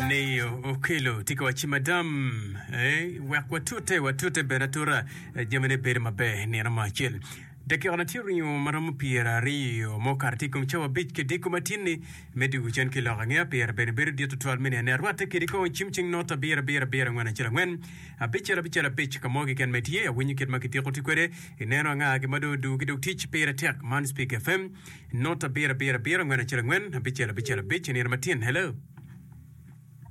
Nio okelo tye ka wacci madam eh, wek watute watute bene atura eh, jamine bedo maber nino mo acel dakikane tye ringo ma romo pyeraryo ma okato tye i kom cawa abic ki diko matinni me dwogo cen ki lok ange apyera bene bedo dit tutwal me nene arwatte kede kong cim cing not abiro abiro abiro angwen acel angwen abicel abicel abic ka mo keken ma itye awinyo kit ma kitiko tye kwede ineno anga ki ma dong odugo ki dog tic pire tek man Speak FM Not abiro abiro abiro angwen acel angwen abicel abicel abic i nino ma tin. Hello.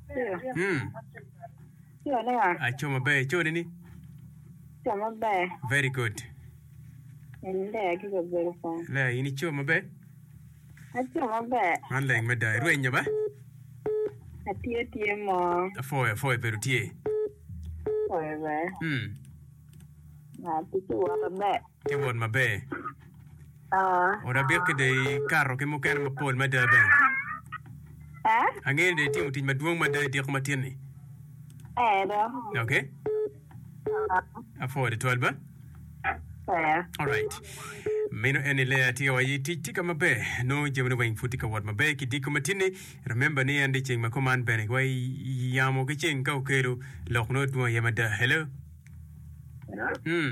Yo. Mm. Yo ne ya. Aco maber ico ni ni. Yo maber. Very good. En le ya gigo bedo pa. Le in ico maber. Aco maber. Man leng me da irwenyo ba. Atye tye mo. Afoyo afoyo bedo tye. Oyo be. Mm. Na tiki wata be. ki wot maber. Ot abikki dong ikato ki mukene mapol mada bene. Angeyo ni dong itimo tic madwong mada i diko matin-ni. Ok. Apwoo tutwal ba. Alright. Meno en ni Lea atika wa aye tic tika maber. Nongo jamine weng pud tye ka wot maber ki diko matin-ni. Remember ni en dong ceng ma kuman bene wa i yamo ki ceng ka okelo lok nongo dwong aye mada. Hello. Hmm.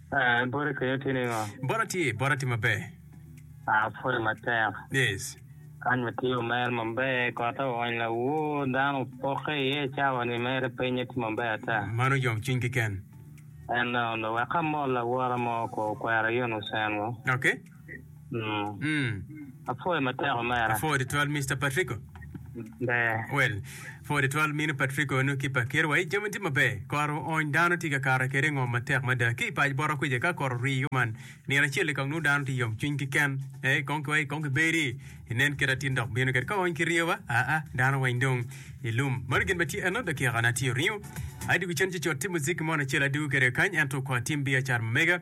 Eh, boti kenyo tye ningo? Bota tye, bota tye maber. Ah, pwode matek. Yes. Kany ma tye omer maber, kotte oony lawor, dano opokke iye cawa ni mere pinye tye maber ata. Mano yom cwiny keken. En dong, dong wek amol lawora mo ko okwera yun ocengo. Okay. Apwoyo matek omera. Apwoyo tutwal Mister Patrico. Ber. Well, apwoyo tutwal minu Patrico eno ki pa Kerwa. Ey, jami tye maber. Koro ony dano tye ka kare kwede i ngom matek mada. Ki i pac bota kwica ka koro rii kuman, nino acel-li kong nongo dano tye i yomcwiny keken. Ee, kong ki wai, kong ki bedi, inen kit atin dok bino kede. Ka oony ki rio ba, aa, dano weng dong i lum. Mano gin ma tye eno, dakika-na tye oringo. Ai dwogo cen cocot, tim muziki mo nacel adwogo kede kany, ento kwa tim biacara ma mega.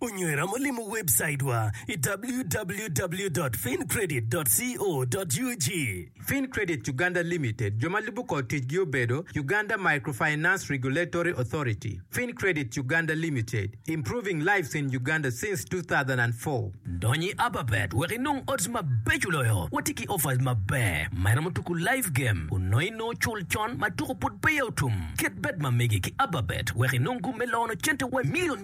Onywera ma limo webcaitwa i www.fincredit.co.ug. Fincredit Uganda Limited, jo ma lubo kor ticgi obedo, Uganda Microfinance Regulatory Authority, Fincredit Uganda Limited, improving lives in Uganda since two thousand and four. Dony i Ababet wek inong odds mabeco loyo. Watye ki offers maber ma iromo tuku live game onongo inongo cul con ma tuku pud peya otum. Ket bet ma megi ki Ababet wek inong gum me loyo cente wa milion.